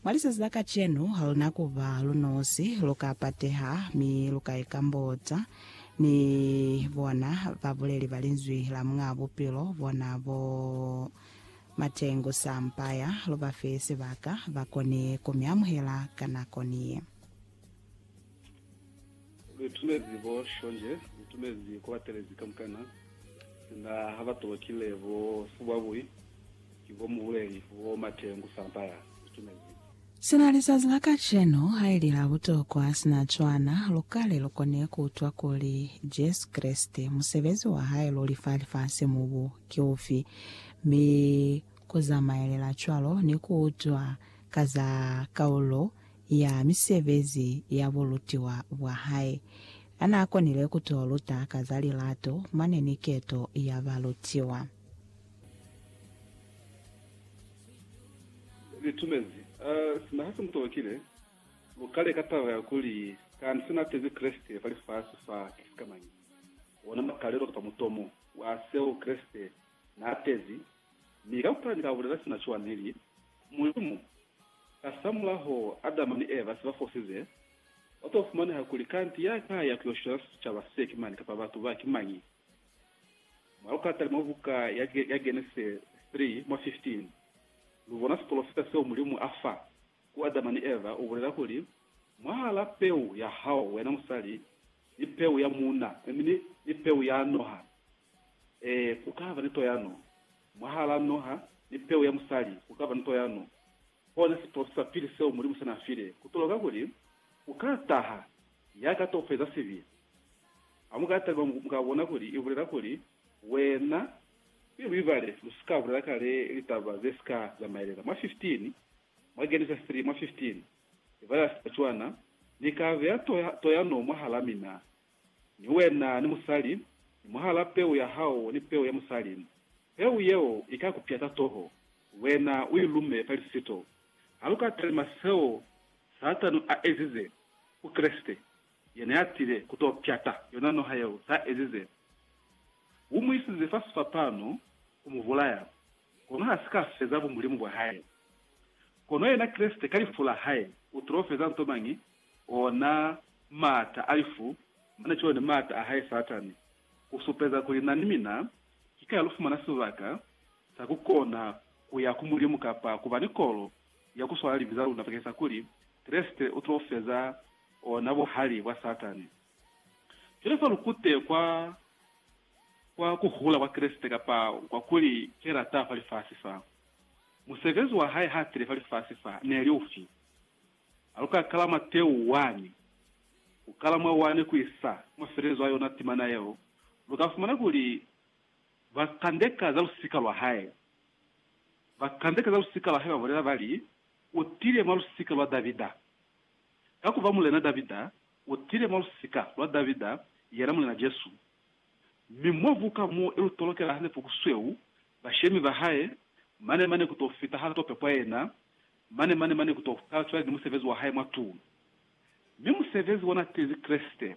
Mwa lisasi la kacenu, haluna kuba lunosi, luka pateha, mi luka ikambota ni bona babuleli ba Linzwi la Muñaa Bupilo, bona bo Matengu Sampaya. Lubafe sibaka bakoni kumiamuhela ka nako niye. Luitumezi bo shonje, luitumezi kwa batelezi kamukana, sina ha ba tolokile bo subwabui ki bo mubuleli wo mate ngu samba ya luitumezi. Sina lizazi la kacenu haili la butokwa sina cwana, lukale lukone kuutwa kuli Jesu Kreste, musebezi wa hae luli fa lifasi mu bu, ki ufi, mi ku zamaelela cwalo ni kuutwa ka za kaulo ya misebezi ya bulutiwa bwa hae. A n'a konile ku t'o luta ka za lilato mane ni keto ya balutiwa. Li tumezi, sina ha si mu tolokile, lu kale ka taba ya kuli, Kanti se n'a tezi Kreste fa lifasi fa, ki sikamañi? Ona makalelo kapa mutomo wa seo Kreste Na tezi, mi kaufela ni ka bulela sina cwa neli, Mulimu, kasamulaho Adama ni Eva se ba fosize, kwa to fumaneha kuli kanti ya ka ya ku yo shwela sicaba se ki mani kapa batu ba ki mañi? Mwa lukatale mwa buka ya Genese 3 mwa 15, lu bona sipolofita seo Mulimu a fa ku Adama ni Eva, u bulela kuli, Mwahala peu ya hao, wena musali, ni peu ya muuna, mi ni, ni peu ya noha. Ee, ku ka ba ni toyano, mwahalaa noha ni peu ya musali, ku ka ba ni toyano. Kona siprosi sa pili seo Mulimu se na file, ku toloka kuli ku ka taha ya ka to feza sibi. Ha mu ka taliba, mu ka bona kuli i bulela kuli, Wena, mi lu ibale, lu si ka bulela kale litaba ze si ka zamaelela. Mwa 15, mwa Genesis 3, mwa 15. Eva ya sa cwana, Ni ka beya toyano mwahal'a mina, ni wena ni musali, ni mwahal'a peu ya hao ni peu ya musali. Peu yeo i ka ku pyata toho, wena u i lume fa lisito. Ha lu ka talima seo Satani a ezize ku Kreste, yena ya tile ku t'o pyata yona noha yeo s'a ezize. U mu isize fa sifapano ku mu bulaya. Kono ha si ka feza bumulimu bwa hae. Kono yena Kreste ka lifu la hae u tilo feza nto mañi? Ona maata a lifu, mane cwalo ni maata a hae Satani, ku supeza kuli na ni mina ki ka lu fumana sibaka sa ku kona ku ya ku Mulimu kapa ku ba ni kolo ya ku swala libi za luna bakeng sa kuli Kreste u tilo feza ona buhali bwa Satani. Cwale fa lu kute kwa, kwa ku hula kwa Kreste, kapa kwa kuli Ki lata fa lifasi fa. Musebezi wa Hae ha tile fa lifasi fa, ne li ufi? Ha lu ka kala mwa teu wani, ku kala mwa wani ku isa ku mafelelezo a yona timana yeo, lu ka fumana kuli ba kandeka za lusika lwa Hae. Ba kandeka za lusika lwa Hae ba bulela ba li, U tile mwa lusika lwa Davida. Ka ku ba Mulena Davida, U tile mwa lusika lwa Davida, yena Mulena Jesu, mi mwa buka mo i lu tolokela hande puku sweu, bashemi ba hae, mane mane ku to fita ha to pepwa yena, mane mane mane ku to kala cwale ni musebezi wa hae mwa tulo. Mi musebezi wa na tizi Kreste, ha.